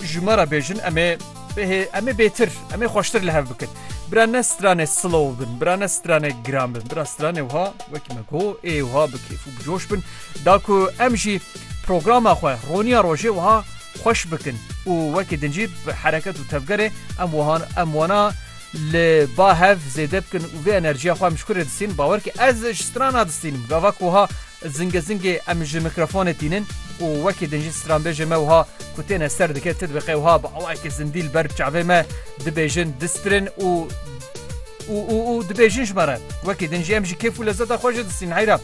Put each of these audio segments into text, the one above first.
Ji me re bêjin em ê bêhê em ê bêtir em ê xweştir li hev bikin. Bira ne stranê slow bin, bira ne stranê giran bin, bira stranê wiha wekî me go ê wiha bi kêf û bi coş bin. Da ku em jî programa xwe roniya rojê wiha xweş bikin û wekî din jî bi hereket û tevgerê em wihan em wana li ba hev zêde bikin û vê enerjiya xwe em ji kurê distînin bawer ki ez ji strana distînim gava ku wiha Zingê zingê em ji mîkrofonê tînin û wekî din jî stranbêjê me wiha ku têne ser dike ti dibiqe wiha bi awayekî zindî li ber çavê me dibêjin distirin û û û û dibêjin ji me re. Wekî din jî em ji kêf û lezeta xwe jê distînin heyra.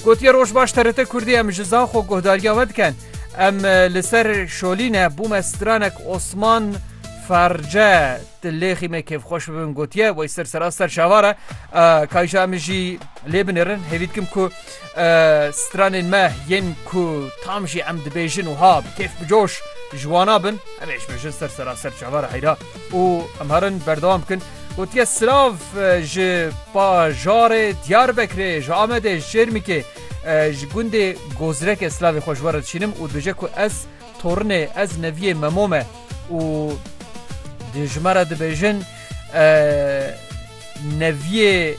Gotiye roj baş TRT Kurdî em ji zan xwe guhdariya we dikin. Em li ser şolîne bûme stranek Osman Ferce. Di lêxî me kêfxweş bibin gotiye wey ser sera ser şavar e. Kayşa min jî lê binêrin hêvî dikim ku stranên me yên ku tam jî em dibêjin wiha bi kêf bi coş ji wana bin em ê ji min jin ser sera ser çavara heyra û em herin berdewam bikin. Gotiye silav ji pajarê Diyarbekirê ji Amedê ji Çêrmikê ji gundê Gozrekê silavê xwe ji we re dişînim û dibêje ku ez Tornê ez neviyê Memo me û di ji me re dibêjin neviyê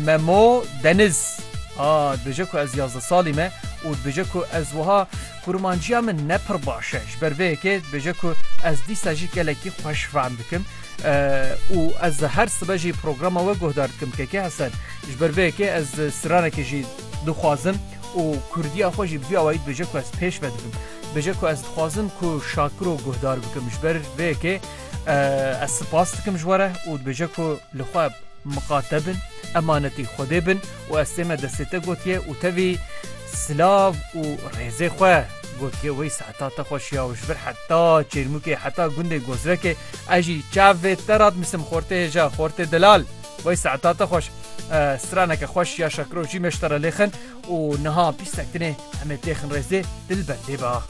Memo Deniz a dibêje ku ez yazdeh salî me û dibêje ku ez wiha kurmanciya min ne pir baş e ji ber vê yekê dibêje ku ez dîsa jî gelekî xweş fehm dikim û ez her sibe jî programa we guhdar dikim keke Hesen ji ber vê yekê ez stranekê jî dixwazim û Kurdiya xwe jî bi vî awayî dibêje ku ez pêş ve dibim. Dibêje ku ez dixwazim ku Şakiro guhdar bikim. Ji ber vê yekê ez sipas dikim ji we re û dibêje ku li xwe miqa te bin, emanetî Xwedê bin û ez tême destê te gotiye û tevî silav û rêzê xwe gotiye wey saeta te xweş ya û ji vir heta Çêrmûkê heta gundê Gozrekê ez jî çavê te re dinivîsim Xortê hêja, Xortê delal. Wey saeta te xweş. Straneke xweş ya şakiro jî me ji te re lêxin û niha bîstek din ê em ê têxin rêzê dilber lê ba.